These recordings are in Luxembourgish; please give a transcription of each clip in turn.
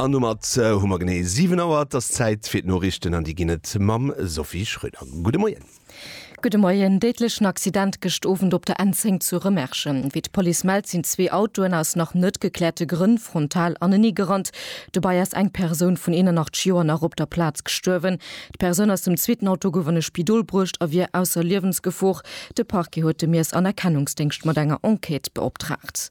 An domat hu mer genee 7 Auer. Et ass Zäit fir d'Noriichten an déi ginn et mam Sophie Schröder. Gudde Moien. Gudde Moien. Déidlechen Accident gëscht Owend op der N10 zu Remerschen. Wéi d'Police mellt, sinn zwee Autoen aus nach net gekläerte Grënn frontal anenee gerannt. Dobäi ass eng Persoun vun 81 Joer nach op der Plaz gestuerwen. D'Persoun aus dem zweeten Auto gouf an e Spidol bruecht a wier ausser Liewensgefor. De Parquet huet de Miess an Erkennungsdéngscht mat enger Enquête beoptraagt.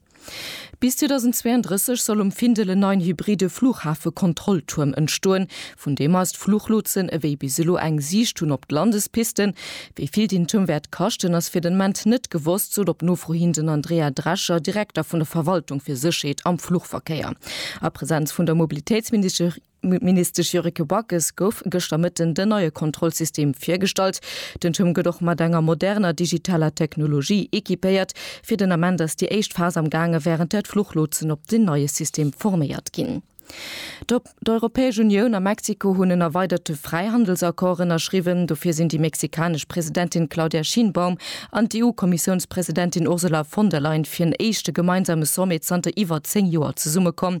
Bis 2032 soll um Findel en neien hybride Flughafe-Kontrolltuerm entstoen, vun deem eis d'Fluchlotsen ewéi bis elo eng Siicht hunn op d'Landespisten. Wéi vill deen Tuerm wäert kaschten, ass fir den Ament net gewosst, sot op Nofro hin den Andrea Drescher, Direkter vun der Verwaltung fir Sécherheet am Fluchverkéier a Presenz vun der Mobilitéitsministesch. D'Ministesch Yuriko Backes gouf gëschter Mëtten den neie Kontrollsystem virgestallt. Den Turm gëtt och mat enger moderner digitaler Technologie equipéiert. Fir den Ament ass déi éischt Phas am gaange wärend där d'Fluchlotsen op den neie System forméiert ginn. D'Europäesch Unioun a Mexiko hunn en erweiderte Fräihandelsaccord ënnerschriwwen. Dofir sinn déi mexikanesch Presidentin Claudia Sheinbaum an d'EU-Kommissiounspresidentin Ursula von der Leyen fir en éischte gemeinsame Sommet zanter iwwer 10 Joer zesummekomm.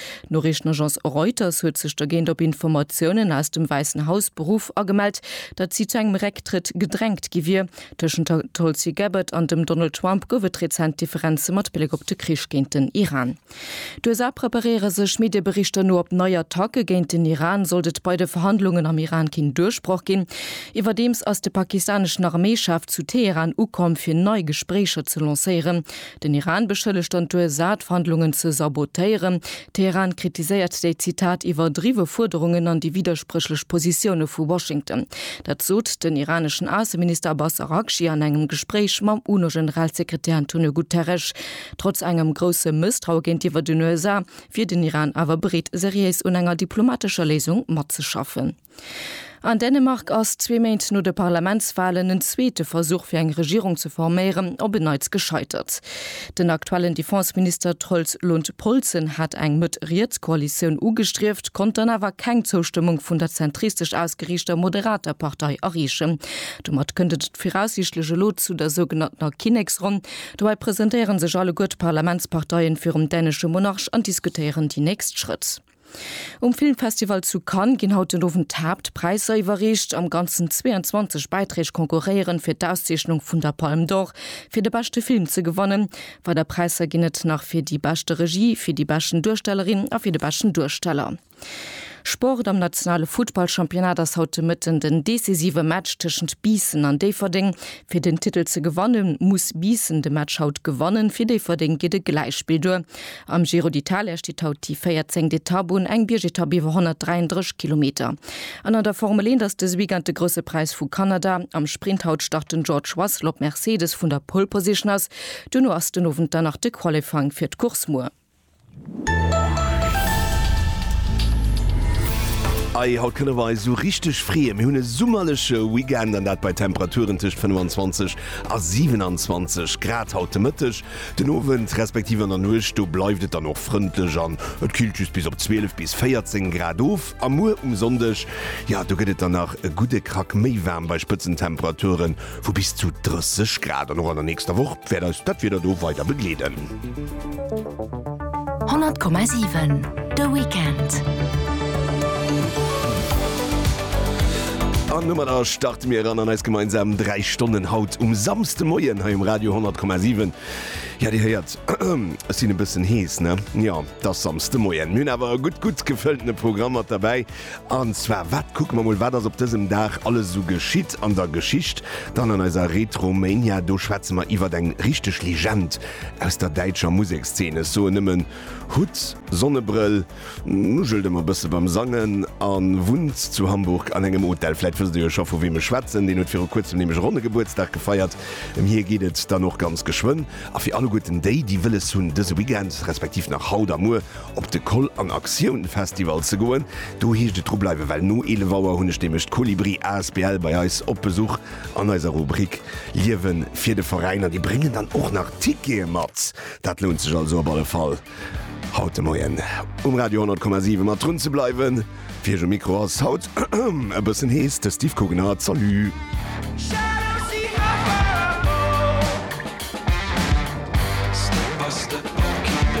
D'Noriichtenagence Reuters huet sech dergéint op Informatiounen aus dem Wäissen Haus beruff a gemellt, datt si zu engem Récktrëtt gedrängt gi wier. Tëschent der Tulsi Gabbard an dem Donald Trump gouf et rezent Differenze mat Bléck op de Krich géint den Iran. D'USA preparéiere sech, Medieberichter no, op nei Attacke géint den Iran, sollt et bei de Verhandlungen am Iran keen Duerchbroch ginn. Iwwerdeems ass de pakistaneschen Arméichef zu Teheran ukomm, fir nei Gespréicher ze lancéieren. Den Iran beschëllegt dann d'USA, d'Verhandlungen ze sabotéieren. Teheran kritiséiert déi, Zitat, iwwerdriwwe Fuerderungen an déi widderspréchlech Positioune vu Washington. Dat sot den iraneschen Ausseminister Abbas Araghchi an engem Gespréich mam UNO-Generalsekretär Antonio Guterres. Trotz engem grousse Mësstraue géintiwwer den USA wier den Iran awer bereet, seriéis un enger diplomatescher Léisung matzeschaffen. An Dänemark ass zwee Méint no de Parlamentswalen en zweete Versuch fir eng Regierung ze forméieren op en Neits gescheitert. Den aktuellen Defenseminister Troels Lund Poulsen hat eng Mëtt-Riets-Koalitioun ugestrieft, konnt dann awer keng Zoustëmmung vun der zentristesch ausgeriichter Moderater Partei erreechen. Domat kënnt et viraussiichtlech elo zu der sougenanntener Kinneksronn. Dobäi presentéiere sech alleguer d'Parlamentsparteien virum dänesche Monarch an diskutéieren déi nächst Schrëtt. Um Filmfestival zu Cannes ginn haut den Owend d'Haaptpräisser iwwerreecht. Am Ganzen 22 Bäiträg konkurréieren, fir d'Auszeechnung vun der Palme d'Or fir de beschte Film ze gewannen. Weider Präisser ginn et nach fir déi beschte Regie, fir déi beschten Duerstellerin a fir de beschten Duersteller. Sport, Am nationale Futtballchampionnat ass haut de Mëtten den decisive Match tëschent Biissen an Déifferdeng. Fir den Titel ze gewanne muss Biissen de Match haut gewannen. Fir Déifferdeng geet e Gläichspill duer. Am Giro d'Italia steet haut déi 14. Etapp un, eng Biergetapp iwwer 133 Kilometer. An an der Formel 1 ass dëse Weekend de Grousse Präis vu Kanada. Am Sprint haut start den George Russell op Mercedes vun der Pole Position aus. Duerno ass den Owend dann nach de Qualifying fir d'Course muer. Ahj, haut kënne mer eis esou richteg freeën. Mir hunn e summerleche Weekend an dat bei Temperaturen tëscht 25 a 27 Grad haut de Mëtteg. Den Owend respektiv an der Nuecht, do bleift et dann och frëndlech an et killt just bis op 12 bis 14 Grad of. A muer um Sonndeg, jo, do gëtt et dann nach e gudde Krack méi waarm bei Spëtzentemperaturen vu bis zu 30 Grad. An och an der nächster Woch wäert eis dat Wieder do weider begleeden. 100,7 de Weekend. An domadder starte mir eran an eis gemeinsam 3 Stonnen haut um Samsdemoien hei um Radio 10,7. Ja Dir héiert ech sinn e bëssen hees, ne? Jo, et ass Samsdemoien. Mir hunn awer e gutt, gutt gefëlltene Programm mat derbäi. An zwar, wat kucke mer mol, wat ass op dësem Dag alles esou geschitt an der Geschicht? Dann an eiser Retromania, do schwätze mer iwwert eng richteg Legend aus der däitscher Musekszeen. Ech soen nëmmen, Hutt, Sonnebrëll, nugelt ëmmer e bësse beim Sangen a wunnt zu Hamburg an engem Hotel. Vläit wësst Dir jo scho, vu weem ech schwätzen. Deen huet viru kuerzem nämlech e ronne Gebuertsdag gefeiert. Ëm hie geet et dann och ganz geschwënn. A fir alleguerten déi, déi wëlles hunn, dëse Weekend, respektiv nach haut a muer, op de Koll an Aktioun Festival ze goen, do heescht et dru bleiwen, well no 11 Auer hunn ech nämlech d'Kolibri asbl bei eis op Besuch an eiser Rubrik Liewen fir de Veräin an déi bréngen dann och nach Tickete mat. Dat lount sech also op alle Fall haut de Moien um Radio 100,7 mat drun ze bleiwen. Fir iech um Mikro ass haut e bëssen hees, de Steve Kugnert. Salut!